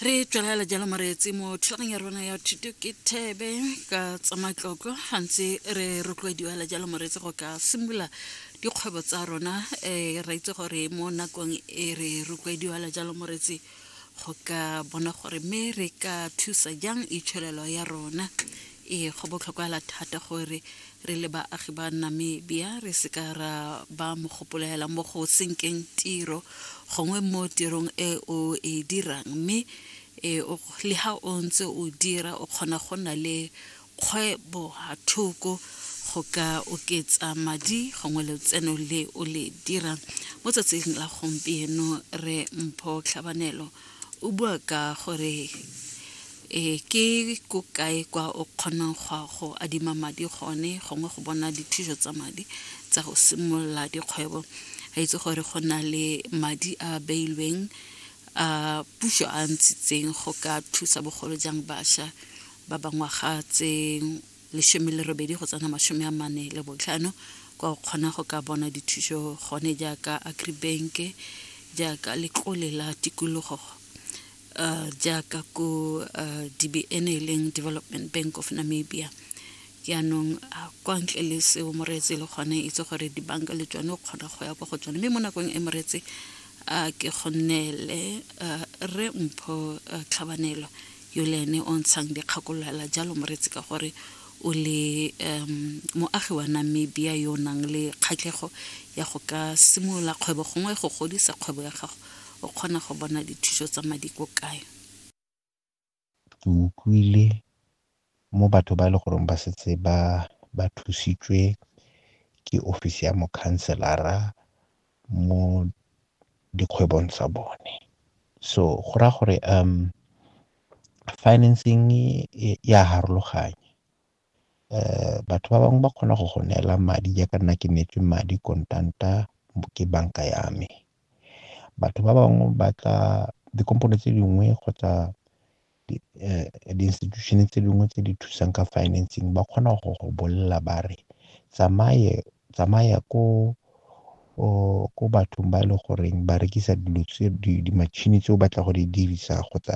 re tswelela jalo moreetsi mo thulagong ya rona ya thuto ke thebe ka tsa matlotlo gantsi re rotloediwa la jalo moreetsi go ka simolola dikgwebo tsa rona um re itse gore mo nakong e re rotloediwa la jalo moreetsi go ka bona gore mme re ka thusa jang itshwelelo ya rona ee go botlhokwa la thata gore re le baagi ba namibia re seka ra ba mogopoloela mo go senkeng tiro gongwe mo tirong e o e dirang mme e, le ga o ntse o dira o kgona go nna le kgwebo thoko go ka oketsa madi gongwe letseno le o le dirang mo tsatsing la gompieno re mpho tlhabanelo O bua ka gore e ke ko kae kwa o kgonang go a go adima madi gone gongwe go bona dithuso tsa madi tsa go simolola dikgwebo a itse gore go na le madi a beilweng a puso a ntshitseng go ka thusa bogolo jang bašwa ba ba ngwaga tse lesome le robedi go tsena masome a mane le botlhano kwa o kgona go ka bona dithuso gone jaaka agribank jaaka letlole la tikologo uh, jaaka ko uh, dbn e leng development bank of namibia jaanong uh, kwa ntle le seo moreetse le gone itse gore dibanka le tsone o kgona go ya kwa go tsone mme mo nakong e moreetse a ke go nneele re mpho tlhabanelo yole ene o ntshang dikgakololala jalo moretsi ka gore o le um moagi wa namibia yo o nang le kgatlhego ya go ka simolola kgwebo gongwe go godisa kgwebo ya gago o kgona go bona dithuso tsa madi ko kae ke utlwile mo batho ba e le goreng ba setse ba ba thusitswe ke ofisi ya mokhanselara mo dikgwebong tsa bone. So go raya gore financing ya harologanya batho ba bangwe ba kgona go go neela madi jaaka nna ke neetswe madi kontanta ke banka ya me. Batho ba bangwe ba tla dikompone tse dingwe kgotsa di-institution-e tse dingwe tse di thusang ka financing ba kgona go go bolelela ba re tsamaya ko bathong ba e le goreng ba rekisa dilo tse di-machine tse o batla go di dirisa kgotsa.